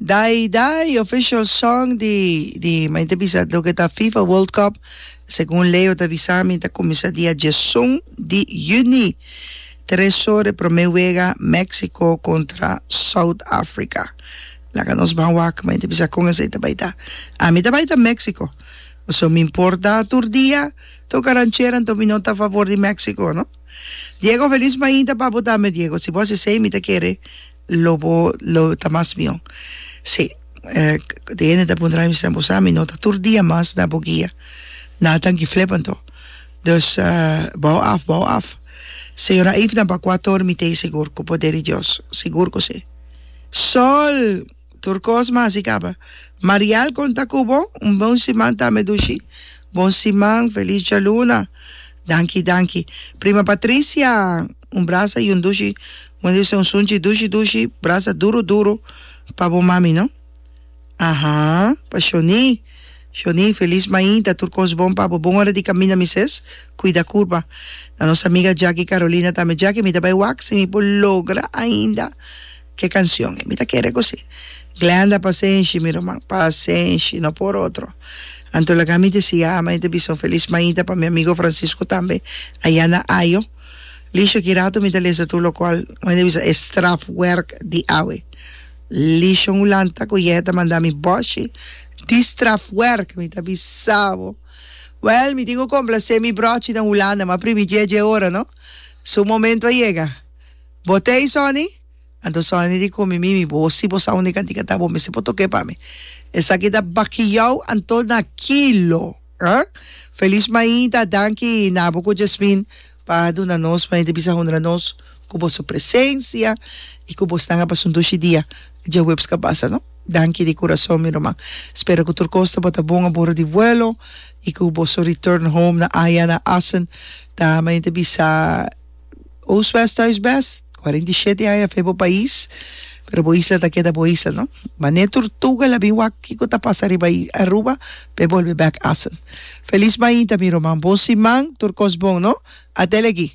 Dai Dai, official song di, di ma inte bisa lo que ta FIFA World Cup, según Leo ta bisa mi ta comienza dia diesun di juni, tres ore prome wega Mexico contra South Africa. Laga nos ban wak, ma inte bisa con esey ta bay ta. Ami ta bay ta Mexico, pasobra mi importa tur dia toca ranchera, enton mi no ta a favor di Mexico no. Diego felis mainta papu tambe Diego si bo haci esey mi ta kere lo bo lo ta mas mihó si di hende ta puntra mi sina bo sa mi no ta tur dia mas na bo guia na tanki flip anto dus bou af bou af señora Eifnan pa kua tor mi tey sigur ku poder di Dios sigur ku si sol. Tur kos mas i kaba. Marial kon ta ku bo? Un bon siman tambe Dushi. Bon siman, felis djaluna. Danki, danki. Prima Patricia, un brasa i un dushi. Bo debe ser un sunchi dushi dushi, brasa duru duru pa bo mami no. Aha, pa Shoni. Shoni, felis mainta, tur kos bon pa bo. Bon ora di kaminda mi ses, kuida kurpa. Na nos amiga Jaki Karolina tambe, Jaki mi ta bai waksi, mi por logra ainda. Ke kansyon e mi ta kere kosé? Glenda, Pasenshi, mi ruman, pasenshi, no por otro. Anto laga mi te sigui ama e te bisa un felis maita pa mi amigo Francisco tambe aya na Ajo. Lisha, Ki ratu mi ta lesa tur lokual un hende bisa e strafwerk di awe. Lisha, Un hulanta ku yèhè ta manda mi bòshi di strafwerk, mi ta bisa bo. Wèl, mi tin ku komplasé mi bròchi den Hulanda, ma primi dje dje ora no, su momentu a yega. Bo ta ei Sonny? Anto Sonny di komi mimi, bo si bo sa unda e kantika ta bo mester por tok'e pa mi. Esaki ta bakiau anto na kilo. Huh? Feliz mainta danki na bo ku Jasmin pa duna nos, mainta bisa hunra nos ku boso presensia i ku bo stanga pasun dushi dia djahuebs kabasa no. Danki di kurason mi ruman. Spera ku tur kos ta bota bon a boro di vuelo i ku boso return home na Aia na Assen ta mainta bisa. Oostwest Thuisbest, cuarenta y siete aña fe bo pais, pero bo isla ta keda bo isla no. Mane Tortuga la bin wak kiko ta pasa riba Aruba p'e bolbe bek Assen. Feliz mainta mi roman, bon siman, tur kos bon no. Atele aki.